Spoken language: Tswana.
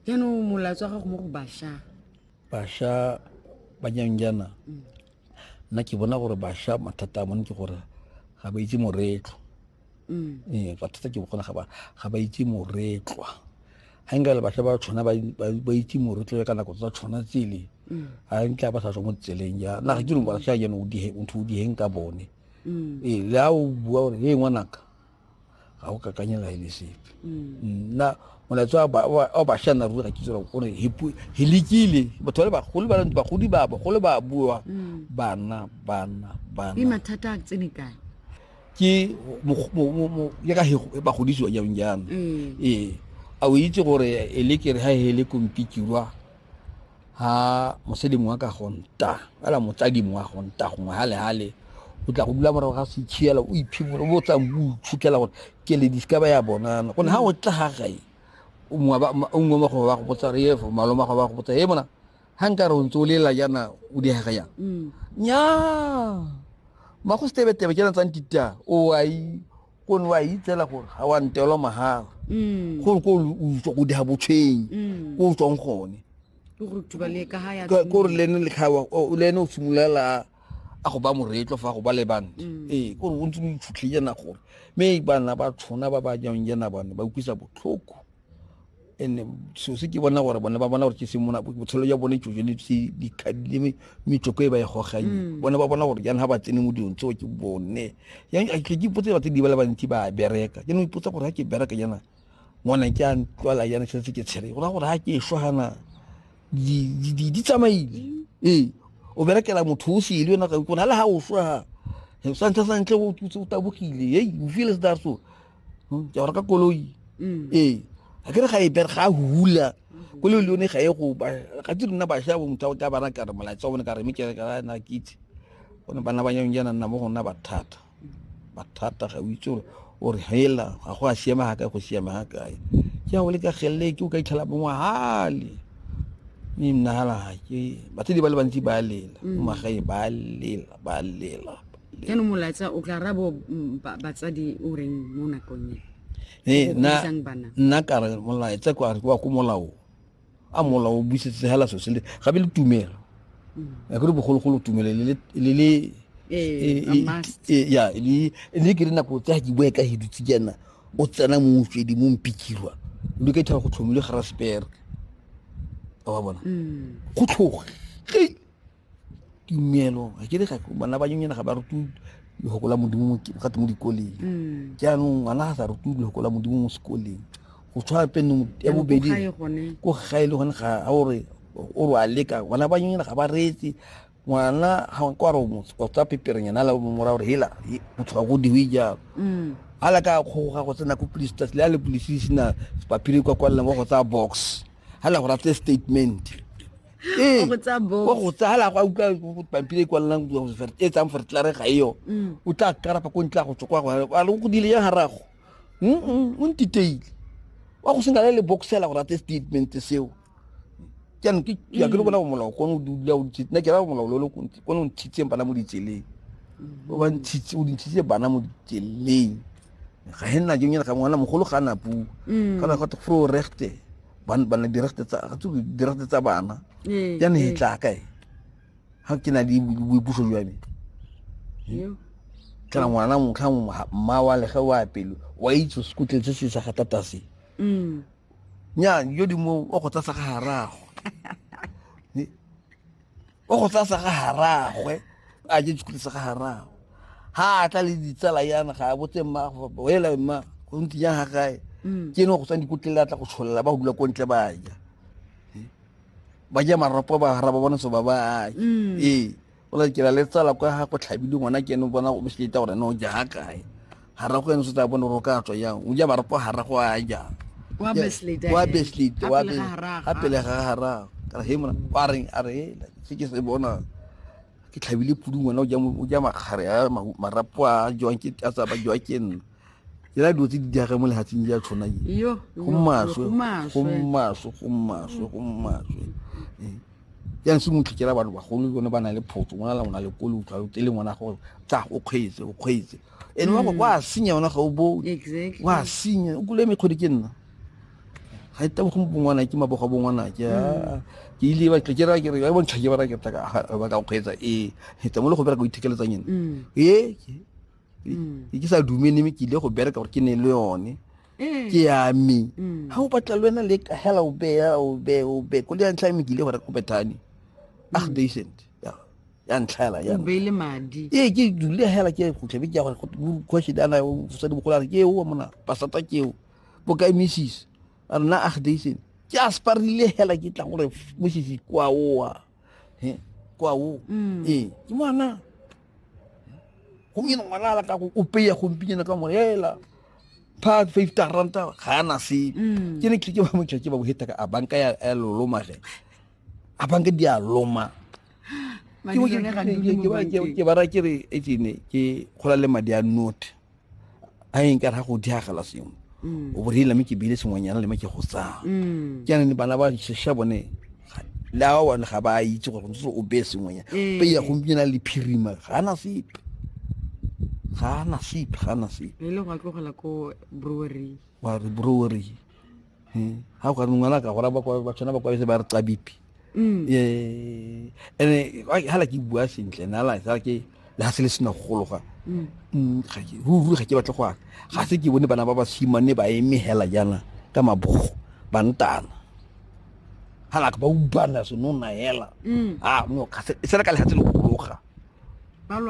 jaanong molaetso wa gago mo go basha basha banyanjana mm. nna ke bona gore basha mathata a bone ke gore ga ba itse moretlho mm. ee bathata ke bogona ga ba itse moretlwa ga nka le basha ba tshwana ba itse moretlho ya ka nako tsa tshwana tsele ga mm. nka ba sa tswa mo tseleng ja na ga ke re basha jane ntho o diheng ka bone ee le a o bua gore e ngwanaka ga o kakanye la ene sepe nna molaetso o bašwa nna ruri ga ke tsela o re he lekile batho ba le bagolo ba bagodi ba bagolo ba bua mm. bana bana bana mathata a tsene kae ke ya ka bagodisiwa jang jang mm. ee a o itse gore e le kere ga e le kompikirwa ha mosadi mongwe ka gonta ala motsadi mongwe a gonta gongwe hale hale o tla go dula morago ga setshiela o iphimolo o botsang o itshutlela gore ke le diska ba ya bonana gone ha o tla ga gae o nngwe mo go ba go botsa re efo maloma go ba go botsa e bona ha nka re o ntse o lela jana o di haga jang mm. nya ma go stebe tebe ke na tsang tita o ai ko ne wa itsela gore ga wa ntelwa mahala mm. gore ko o tswa go diga botshwenyi mm. ko o tswang gone kore lene lekgawa le ene o simololela a go ba moretlo fa go ba le bante mm. ee kore o ntse o itshutlhe jana gore mme bana ba tshona ba ba jang jana bane ba utlwisa botlhoko and so se ke bona gore bone ba bona gore ke semona botshelo jwa bone tsojo le le metsoko e ba e goganye mm. bone ba bona gore jang ga ba tsene mo dilong tseo ke bone ke ipotse batse di ba le bantsi ba bereka ke no ipotsa gore ga ke bereka jana ngwana ke a ntlwala jana ke setse ke tshele go ra gore ga ke ešwa gana di tsamaile mm. ee o berekela motho o sele yona ka ikona le ga o swa ga santlha santle o tabogile ei o feel se that so hmm, ke reka koloi mm. ee ga ke re ga e bere ga hula mm-hmm. koloi le yone ga e go ga di rona bašwa bo motho ka bana kare molaetsa o ne ka re mekere ka na ke itse gone bana ba nyang jana nna mo gona bathata bathata ga o itse gore o re hela ga go a siama ga kae go siama ga kae ke a o le ka gelele ke o ka itlhela bongwe hale mme mnagala ga ke batho di ba le bantsi ba lela mm. magae ba lela ba lela jaanong molaetsa o tla rabo mm, batsadi o reng mo nakong e ee, nna ka re molaetsa kwa wa ko molao a molao o busetse hela so sele gabe le tumelo mm. a kere bogologolo tumelo le le ee, ee, ya le ke re nako tsa ke bua ka he dutse jana o tsena mo mofedi mo mpikirwa le ka ithaba go tlhomile ga raspere wa bona mm. go tlhoge tumelo ga ke re bana ba nyonyana ga ba rutwe lefoko la modimo gate mo dikoleng mm. jaanong ngwana ga sa rutwe lefoko la modimo mo sekoleng go tshwana pene ya bobedi ko gae le gone ga a ore o re a leka ngwana ba nyonyana ga ba reetse ngwana ga ko a re o tsa peperenyana la mora gore hela o tshoga go diwe jalo mm. a la ka kgoga go tsena ko police tsatsi le a le police sena paphiri kwa kwalelang wa go tsaya box ga la go ratse statement ee go tsa bo wa go tsala go utlwa go pampiri e kwalelang go fer- e tsang fertlare ga eo Mm. o tla karapa ko ntle a go tsokwa go a le go dile yang garago Mm-mm, o ntiteile wa go sena le le boxela go rate statement seo jaanong ke ya ke le kona go molao kone o dula o ntshitse nna ke ra go molao lo lo kone o ntshitseng bana mo ditseleng o ba ntshitse o ntshitse bana mo ditseleng ga he nna jong ga ngwana mogolo ga na puo mm. kana go fro rechte ban ban di rechte tsa ga tsu di rechte tsa bana ee, ya ne ee. tla kae ha ke na di bui puso jwa me kana ngwana mo kha mo ma wa le ga wa pelo wa itse skutle tse se sa ga tata se mm nya yo di mo o go tsa sa ga harago o go tsaya sa ga haragwe a je dikolo sa ga haragwe ha a tla le ditsala yana ga a botse mma wela mma go ntse jang ga gae mm. ke ne go tsang dikotlele a tla go tsholela ba go dula ko ntle ba ja ba ja maropo ba hara ba bona so ba ba mm. ee o la ke la le tsala kwa ga go tlhabile ngwana ke ne bona o mosita gore ne o ja ga kae hara go ene se tsa bone ro ka tswa yang o ja ba re po hara go a ja wa beslit wa beslit wa be a pele ga hara ka he mona wa reng a re se ke se bona ke tlhabile pudu ngwana o ja o ja makgare a marapo a jwang ke a tsaba jwa ke nna ke la dutse di diage mo lehatsing ja tshwana ye go maswe go maswe go maswe go maswe ya nse mo tlhikela batho bagolo bone ba na le photso ngwana la ngwana le kolo utlwa o tele ngwana gore tsa o kgweetse o kgweetse ene wa go kwa mm. senya ona ga o bone exactly wa senya o kule mekgodi ke nna ga ita go bongwana ke mabogo bongwana ke mm. ke ile ba ke ra ke re ba bontsha ke ba ra ke tla ka ba ka go kgwetsa e hetsa mo le go bereka go ithekeletsa nyene mm. e ke ke sa dumene me ke ile go bereka gore ke ne le yone ke ya me ha o batla le wena le ka hela o be o be o be ko le ya ntlha me ke ile go reka go bethane ah decent ya ntlhaela ya beile madi ee ke dule hela ke khutlhe be ke ya gore question ana mosadi mogolo a re ke eo mona pasata ke eo bokae missis a rena ag daysene ke a sparile hela ke tla gore mosisi kwa oa he kwa o mm. ee ke ngwana gompieno ngwana ala ka go o peya gompieno ka mo hela pha five taranta ga ana se mm. ke ne ke ke ba motšha ke ba boheta ka a banka ya lolomage a banka di a loma ke bo jone ga di ke ba ke ba ra ke re e tsene ke gola le madi a note a eng ka ra go diagala sengwe mm. o borile me ke bile sengwenyana le me ke go tsaya mm. ke ne bana ba sesha bone le a wa ga ba itse gore ntse o be sengwenyana mm. pe ya go mpina le phirima ga na sepe ga na sepe ga na sepe e le go tlogela ko brewery wa re brewery Eh, ga o ka re ngwana a ka gora ba kwa- ba tshwana ba kwabetse ba re tsabipi Mm. Eh, ene gala ke bua sentle nala sa ke le ga se le sena go gologa Mm. Mm, ga ke- ruri ga ke batle go ana ga se ke bone bana ba basimane ba eme hela jaana ka mabogo ba ntana halaka ba ubana senona hela Mm. a no ga se e sena ka legatse le go gologa ba lwa